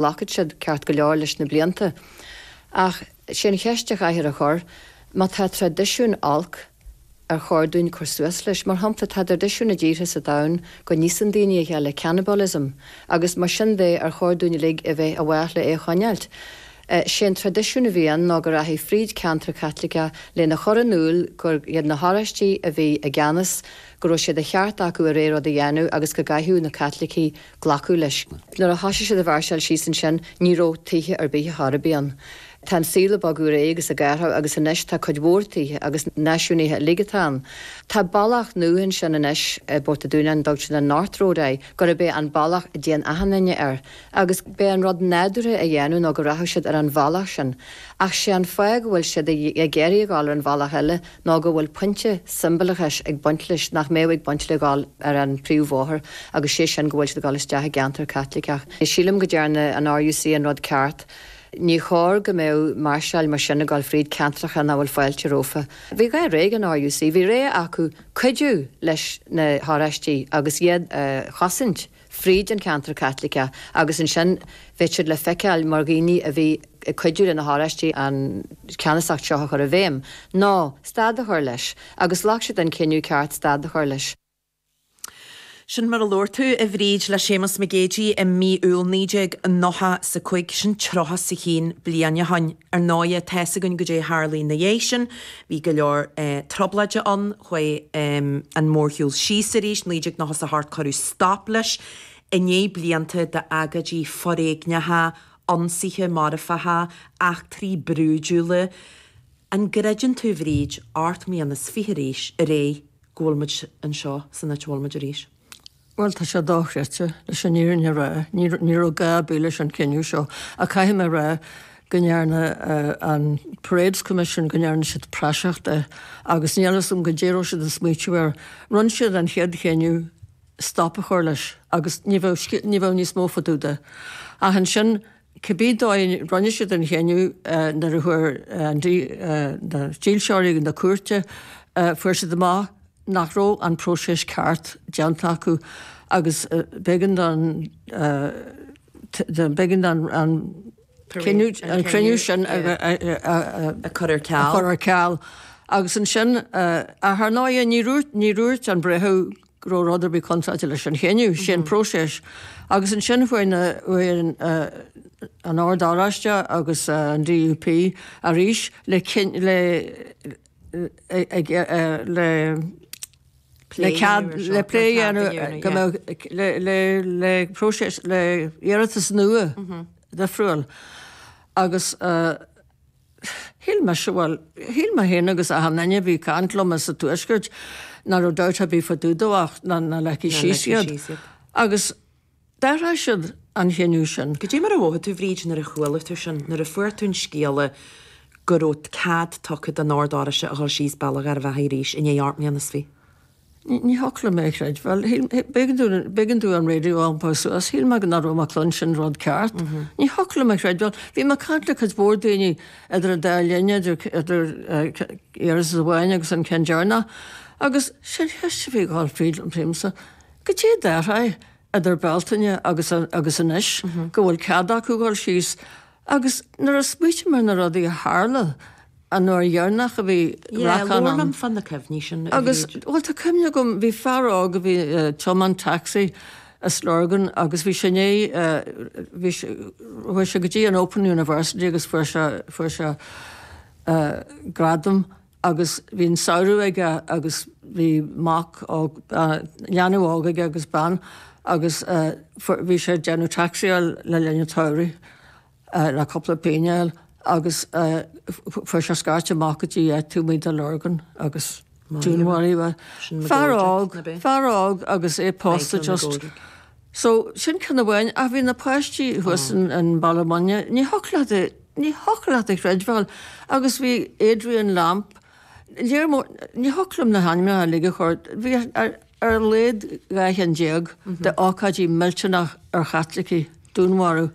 ghlacfadh siad ceart go leor leis na blianta ach sé an cheist a chaithfear a chur, má tá traidisiún olc ar chóir dúinn cur suas leis? Mar shampla, tá traidisiún i dtíortha sa domhan go n-íosann daoine a chéile, cannibalism, agus mar sin de ar chóir dúinn uilig a bheith i bhfách le é a choinneáilt? Sé an traidisiún a bhí ann ná go rachfaí fríd ceantracha Caitliceacha lena chur in iúl gur iad na hOráistigh a bhí i gceannas, go raibh sé de cheart acu a rogha rud a dhéanamh agus go gcaithfeadh na Caitlicigh glacadh leis. Nuair a thosaigh siad a mháirseáil síos ansin, ní raibh tithe ar bith chóir a bheith ann. Tá an saol ag bogadh ar aghaidh agus ag athrú agus anois tá cuid mhór tithe agus náisiúnaithe uilig atá ann. Tá bealach nua ansin anois i bPort a' Dúnáin a dtugtar an North Road air, gurb é an bealach a dtéann achan duine air, agus b'é an rud nádúrtha a dhéanamh ná go rachadh siad ar an bhealach sin. Ach sé an fáth go bhfuil siad ag iarraidh a dhul ar an bhealach eile, ná go bhfuil pointe siombalachais ag baint leis nach mbeadh ag baint le dhul ar an bpríomhbhóthar agus sé sin go bhfuil siad ag dul isteach i gceantar Caitliceach. Sílim go ndearna an RUC an rud ceart. Ní chóir go mbeadh máirseáil mar sin ag dul fríd ceantracha nach bhfuil fáilte rófa. Bhí dhá rogha ag an RUC, bhí rogha acu cuidiú leis na hOráistigh agus iad a chosaint. fríd an ceantar Caitliceach agus ansin bheadh siad le feiceáil mar dhaoine a bhí ag cuidiú le na hOráistigh an ceannasacht seo a chur i bhfeidhm. Nó, stad a chur leis. Agus ghlac siad an cinneadh ceart stad a chur leis. Sin mar a labhair tú, a Bhríd, le Séamus Mac Géidigh i mí Iúil 1995. Sin tríocha is a haon bliain ó shin. Ar ndóighe, tá's againn goidé a tharlaigh ina dhiaidh sin. Bhí go leor trioblóide ann. Chuaigh an mórshiúl síos arís, 1998, cuireadh stop leis i ndiaidh blianta d'agóidí foréigneacha, ionsaithe marfacha, eachtraí brúidiúla. An gcreideann tú, a Bhríd, ocht mbliana is fiche arís ar aghaidh, go bhfuil muid anseo san áit a bhfuil muid arís? Bhuel, tá sé dochreidte, leis an fhírinne a rá. Ní raibh gá ar bith leis an chinneadh seo, ach caithfidh mé a rá go ndearna an Parades Commission, go ndearna siad praiseach de, agus níl a fhios agam goidé a raibh siad ag smaoitiú air. Rinne siad an chéad chinneadh stop a chur leis agus ní bheadh, ní bheadh níos mó fá dtaobh de. Ach ansin, cibé dóigh a rinne siad an chinneadh nuair a chuaigh na dílseoirí chun na cúirte, fuair siad amach nach raibh an próiseas ceart déanta acu agus b'éigean don b'éigean don an cinneadh an cruinniú sin a chur ar ceal agus ansin ach ar ndóigh ní dúirt ní dúirt an breitheamh go raibh rud ar bith contráilte leis an chinneadh sin, próiseas. Agus ansin chuaigh an Ord Oráiste agus an DUP arís le cead le plé a dhéanamh le iarratas nua d'fhiosrú agus Shíl mé, bhuel, shíl mé féin agus achan duine a bhí ag caint liom as an Tuaisceart ná raibh dabht ar bith fá dtaobh dó ach ná ligfí síos iad. Agus d'athraigh siad an chinneadh sin. Cad é mar a mhothaigh tú, Bhríd, nuair a chuala tú sin, nuair a fuair tú an scéala go raibh cead tugtha don Ord Oráiste a dhul síos Bealach Gharbh Achaidh arís i ndiaidh ocht mbliana is fiche? Ní thiocfadh liom é a chreidbheáil. B'éigean domh an raidió a iompó suas. Shíl mé nach raibh mé ag cluinstin rud ceart. Ní thiocfadh liom é a chreidbheáil. Bhí mé ag caint le cuid mhór daoine idir an dá linn, idir iarratas amháin agus an ceann deireanach, agus sé'n cheist a bhí ag dul fríd an phríomhsa, 'Goidé a d'athraigh idir Bealtaine agus agus anois, go bhfuil cead acu dhul síos agus nuair a smaoitim ar na rudaí a tharla an uair dheireanach a bhí racán ann, agus bhuel tá cuimhne agam bhí fear óg a bhí tiomáint taxi i Lurgan agus bhí sé i ndiaidh bhí sé chuaigh sé go dtí an Open University agus fuair sé fuair sé gradam agus bhí an samhradh aige agus bhí mac óg, leanbh óg aige agus bean agus bhí sé ag déanamh taxi-áil le linn an tsamhraidh le cúpla pingin a fháil agus fuair sé scairt amach go dtí áit taobh amuigh de Lurgan agus dúnmharaíodh é. Fear óg, fear óg agus é pósta just. So, sin ceann amháin ach bhí na páistí thuas in Ballymoney, ní thiocfadh leat é, ní thiocfadh leat a chreidbheáil agus bhí Adrian Lamph, lear mór, ní thiocfadh liom na hainmneacha uilig a chur, bhí ar a laghad dhá cheann déag de ócáidí millteanach ar Chaitlicigh, dúnmharú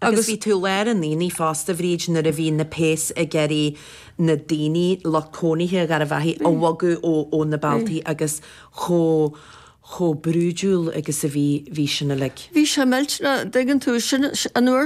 agus. Agus bhí tú lár an aonaigh fosta Bhríd nuair a bhí na péas ag iarraidh na daoine, lucht cónaithe Gharbh Achaidh a bhogadh ó na bealtaí agus chomh, chomh brúidiúil agus a bhí, bhí sin uilig. Bhí sé millteanach, dtuigeann tú, sin an uair